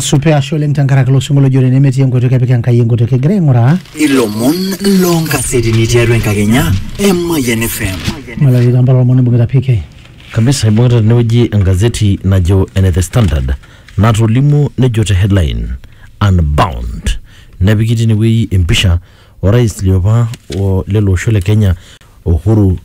supe ashe oleng tenkaraki ilo sinkolio ojo nemetii enkoitoi kepik enkai enkoitoi kigira aing'uraa ilomon loonkasetini tiatua enkakenya e Mayian FM. malari kampala olomoni ibung'ita PK Kamisa ibung'ita tenewueji engazeti najo ene The Standard natolimuo nejo te headline unbound nepiki tinewueji empisha orais liopa o lele osho le Kenya Uhuru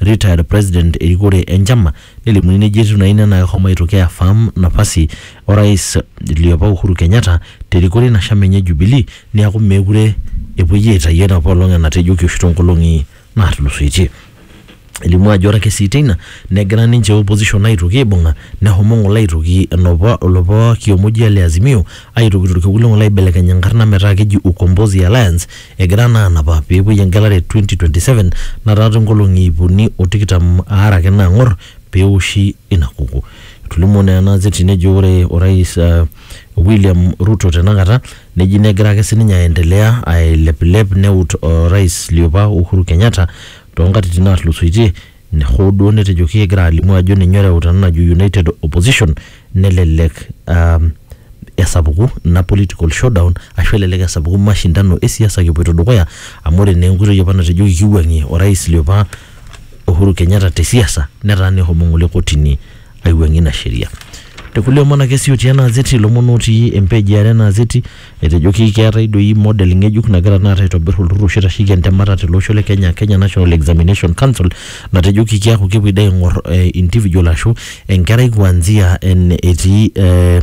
retired president erikore enchama nelimuni nejo etiu naa ina naa kehomo aitoki aiaffirm napasi orais liopa Uhuru Kenyatta terikore ina shama enye e Jubilee neaku meekure epuoi aitayu enapa olong enatejoki oshi toonkolong'i naatulusoitie. Elimu ajo ore ake sii teina negira ninche opposition aitoki aibung'a nehomo ng'ole aitoki enopa olopa kioma oji ole Azimio aitoki torkekun le ng'ole aibelekeny enkarna metaa keji Ukombozi Alliance Egira naa anapa pee epuoi engelare e 2027 nataa toonkolong'i iip uni o tikitam aare ake naang'or pee eoshi ina kukuo. Etolimuo naa ena azeti nejo ore orais uh, William Ruto tenakata neji negira ake sininye aendelea ailepilep neut orais liopa Uhuru Kenyatta toonkatitin naatulusoitie hoo duo netejoki egira alimu ajo ninye oreuta ena najo United Opposition nelelek um, esapuku ina political showdown ashu elelek esapuku mashindano esiasa kipoito dukuya amu ore naa enkoitoi apa natejoki kiwuang'ie orais liopa Uhuru Kenyatta te siasa netaa nehomo ng'ole kotini aiwuang'ie ina sheria. Te kulie omon ake sii otii ena azeti, ilomon otii empage e are ena azeti, etejoki keetae doi model ng'ejuk nagira tenakata aitobir olturrur oshi oitasheki entemata tele osho le Kenya, Kenya National Examination Council, natejoki keaku kepuoi doi aing'or individual ashu enkerai kuanzia ene etii eh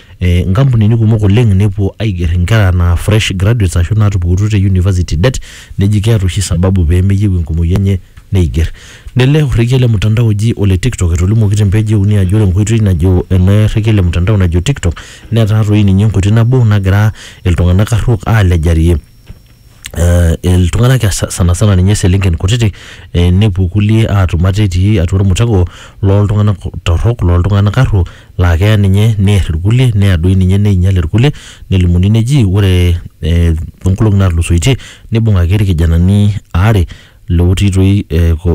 eh, nkampunini kumok oleng nepuo aiger inkera naa fresh graduates ashu naatupukutuo te university det neji keeta oshi sababu pee meyieu enkumoi enye neiger nele orrekie le mtandao oji ole tiktok etolimuoki te mpeji euni ajo ore enkoitoi najo ele rrekie le mtandao najo tiktok netaa toi ninye enkoitoi nabo nagira iltung'anak arruok aalejarie eh, iltung'anak ya sa- sana sana ninye selenken kutiti eh, nepuo kulie aatum ate etii atua ormutego looltung'anak torrok looltung'anak arruo laa keya ninye neer irkulie neya doi ninye neinyial irkulie nelimuni neji ore eh, toonkolong'i naatulusoitie nibung'aki irkijanani aare Lootii toi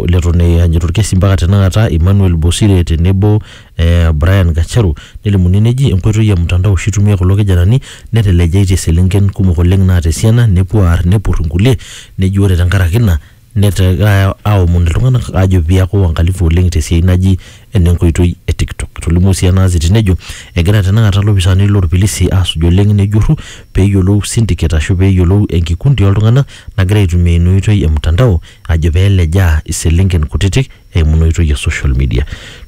leton eanyita olkesi mpaka tenakata Emmanuel Bosire tenebo eh Brian Gacharu nelimuni neji enkoitoi e mtandao oshi eitumia kulo kijanani netelejaitie iselenken kumok oleng naata esiana nepuo aar nepur inkulie neji ore tenkaraki ina negira aomon iltung'anak aajo piaku uangalifu oleng tesiai naji enenkoitoi e TikTok. Etolimuo sii ena aziti nejo egira tenakata lopisaani lorpilisi aasuj oleng nejurru pee eyiolou syndicate ashu pee eyiolou enkikundi oltung'anak nagira aitumia ina oitoi e mtandao ajo pee elejaa iselenken kutitik eimu ina oitoi e social media.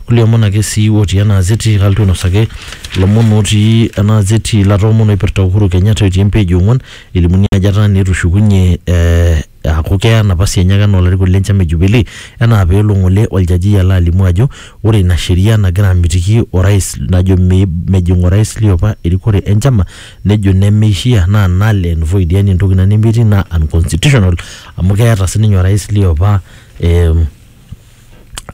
Kulie omon ake sii otii ena aziti kalotu ainosaki ilomon otii ena aziti latoomon oipirta Uhuru Kenyatta otii empage e ong'uan elimuni ajo etaa naa etushukunye eh aaku keya napasi enye ake anaa olarikoni le nchama e Jubilee enaa pee elo ng'ole oljaji alo alimu ajo ore ina sheria nagira amitiki orais najo me- mejing orais liopa erikore e nchama nejo nemeishia naa null and void yani entoki ina nemetii naa unconstitutional amu keeta sininye orais liopa eh,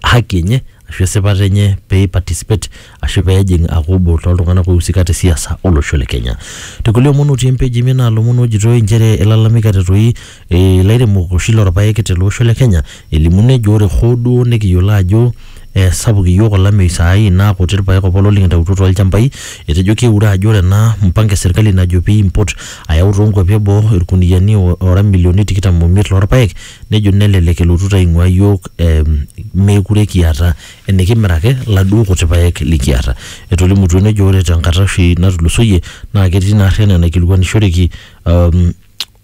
haki enye ashu esipata enye pei participate ashu pejing aaku obo toltung'anak oiusika te siasa olosho le Kenya. Te kulie omon otii empeji emiet naa ilomon ojitoi inchere ilalamika te toi ilairemok oshi lorpaek tele osho le Kenya elimu nejo ore hoo duo nekiyiolo ajo sapuk iyiook olameyu saai naa kuti irpaek opa oleng likintautuo tolchambai etejo keure ajo ore ena mpango e serkali najo pei impot ayau tonkuapi eboo irkuniani ora imilioni tikitam omiet lorpaek nejo nelelek elotuta aing'ua iyiook eh, meekure kiata enikimiraki laduo kuti paek likiata. Etolimutuo nejo ore tenkata oshi natulusoyie naa ketii ina arri enaa enaikilikuanishoreki um,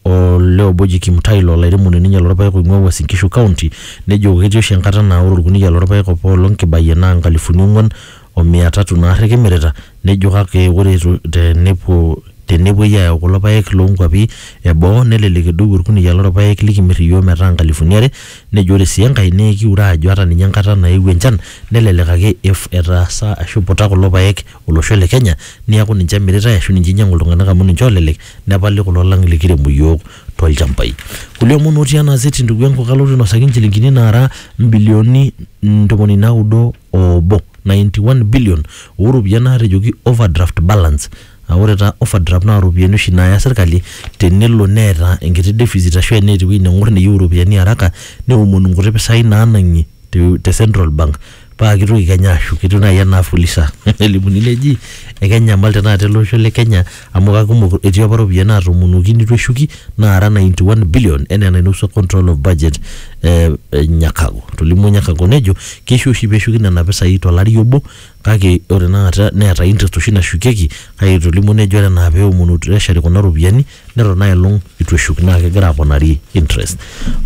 olee obo oji Kimutai laa olairemoni ninye lorpaek oing'ua Uasin Gishu County nejo ketii oshi enkata naa ore orkuniyia lorpaek apaelong kibayie naa nkalifuni ong'uan o mia tatu naarri kimirita, nejo kake ore etu te nepuo te nepuoi ayau kulo paek loo nkuapi e boo nelelek edou olkuniyia loo lpaek likimir iyiook metaa nkalifuni are. Nejo ore sii enkae naa ekiure aajo ata ninye enkata naewuo enchan nelelek ake ef etaasa ashu eiputa kulo paek olosho le Kenya neaku ninche emiritae ashu ninche einyiang'u iltung'anak amu ninche oolelek nepali kulo lang likiremu iyiook too lchambai. Kulie omon otii ena gazeti ndugu yangu kalotu ainosaki inchilingini naara imbilioni ntomoni naudo obo 91 billion oo ropiyiani naatejoki overdraft balance aa ore taa overdraft naa ropiyiani oshi naaya sirkali tenelo neeta enkiti deficit ashu eneeta ewueji neng'or neyieu iropiyiani haraka neomonu nkuti pisai naanang'i te te central bank paa kitoki kenya ashuku etiu naai enaa fuliza nelimuni neji ekenyamal tenakata ele osho le kenya amu kakumok etii apa ropiyiani naatomonuoki nitu eshuki naara 91 billion enaa enainopua control of budget eh, eh, Nyakago tolimuo Nyakago nejo keisho oshi peshuki nena pisai tolari obo kake ore tenakata neeta interest oshi nashukieki kake etolimuo nejo ore enaa peomonu treasury kuna ropiyiani neton aelong itu eshuk naa kegira aponari interest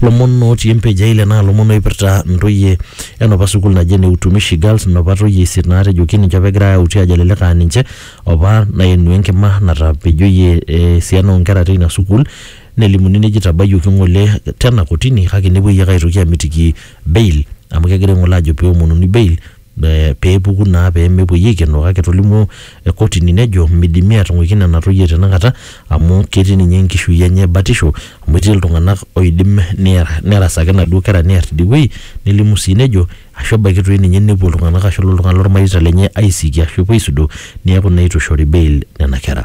lomon otii empage eile naa lomon oipirta ntoyie enopa sukuul naji ene utumishi girls nopa toyie isiet naatejoki ninche apa egirae auti ajo elelek aa ninche Opa naenu enkima natapejoyie esiana oo nkera teina sukuul nelimuni neji itabayioki ng'ole tena kotini kake nepuoi ake aitoki amitiki bail amu kegira aing'ole ajo pee eomonuni bail pee epuku naa pee mepuoi aikenoo kake etolimuo kotini nejo midimi aatung'uiki nena toyie tenakata amu ketii ninye enkishui enye batisho amu etii iltung'anak oidim neya nerasaki inaduo kera neer tidie wuei nelimu sii nejo Ashu ebaiki toi ninye nepuo iltung'ana ashu elo oltung'ani lolmareita lenye aisiki ashu epuo aisudoo neaku naa eitu eishori bail nena kera.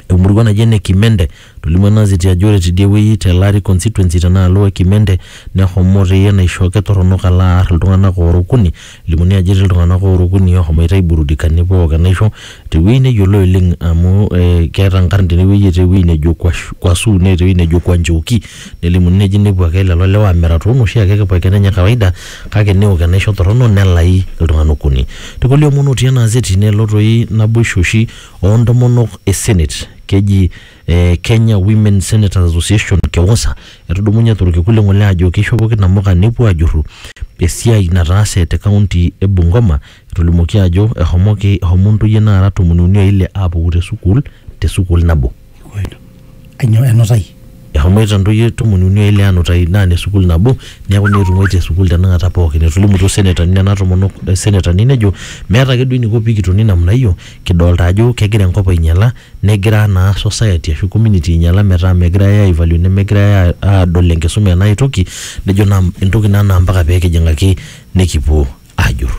Emurua naji ene Kimende, etolimuo ena ziti ajo ore tidie wueji te Lari Constituency tenaalo e Kimende neshomo toi enaisho kitoronok alo aar iltung'ana oora okuni. Elimuni ajo etii iltung'ana oora okuni oshomoita aiburudika nepuo aok enaisho te wueji neyioloi oleng amu keeta nkarn tene wueji etii ewueji nejo Kwashu neeta ewueji nejo Kwanjoki. Nelimuni neji nepuo ake lelo lewa amir atua enoshi ake kipoiken enye e kawaida kake neok enaisho torrono nelai iltung'ana okuni. Te kulie omon otii ena azeti nelo toi naboisho oshi oo ntomonok e senet keji eh Kenya Women Senators Association, KEWOSA, etudumunye to lkekun le ng'ole ajo keishopoki namuka nepuo ajurru esiai nataase te kaunti e Bungoma etolimuoki ajo ehomoki ehomo ntoyie naara tomoni uni o ile aapuku te sukuul te sukuul nabo. Kainyoo enutai? Eshomoita ntoyie tomon uni o ile aanutai naa ne sukuul nabo neeku neetung'uai te sukuul tenakata pookin. Etolimutuo senetani nena tomonok senetani nejo meeta ake duo eniko pikitoni namna hiyo kidolita ajo kegira enkop ainyala negira naa society ashu community ainyala metaa megirai ai value nemegirai aadol enkisuma enaa ae toki nejo naa entoki naa naa mpaka pee kijing'aki nikipuo. ajur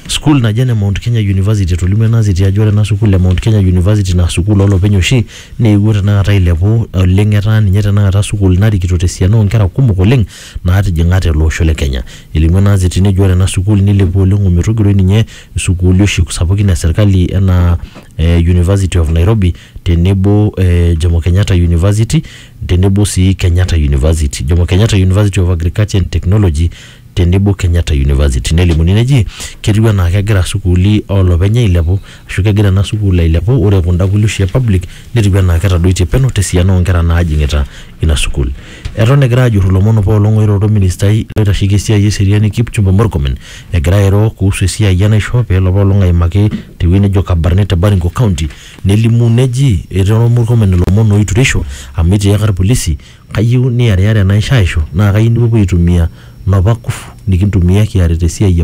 sukuul naji ene Mount Kenya University etolimu ena siti ajo ore ena sukuul e Mount Kenya University naa sukuul olopeny oshi neewuo tenakata ailepu oleng etaa ninye tenakata sukuul narikito tesiana oonkera kumok oleng naatijing'a tele osho le Kenya. Elimu ena siti nejo ore ena sukuul nilepua oleng ometogiroi ninye sukuuli oshi sapukin e serkali enaa eh University of Nairobi tenebo eh Jomo Kenyatta University tenebo sii Kenyatta University. Jomo Kenyatta University of Agriculture and Technology tenebo Kenyatta University nelimuni neji ketiu anaa kegira sukuuli olopeny ailepu ashu kegira ena sukuul ailepu ore kunda kulie oshi e public netiu anaa ketadoitie peno tesiana oonkera naajing'ita ina sukuul. Eton egira ajurru ilomon apaelong oiroro orministai oitasheki esiai eseriani Kipchumba Murkomen egira airo kuhusu esiai enaisho peelo apaelong aimaki tewueji nejo Kabarnet te Baringo county nelimu neji eteero Murkomen ilomon oitureisho amu etiaka irpolisi Kayieu niariyara enaisho aishu naa kayieu nipuopuo aitumia nopa kufu nikintumia kiarita esiai e.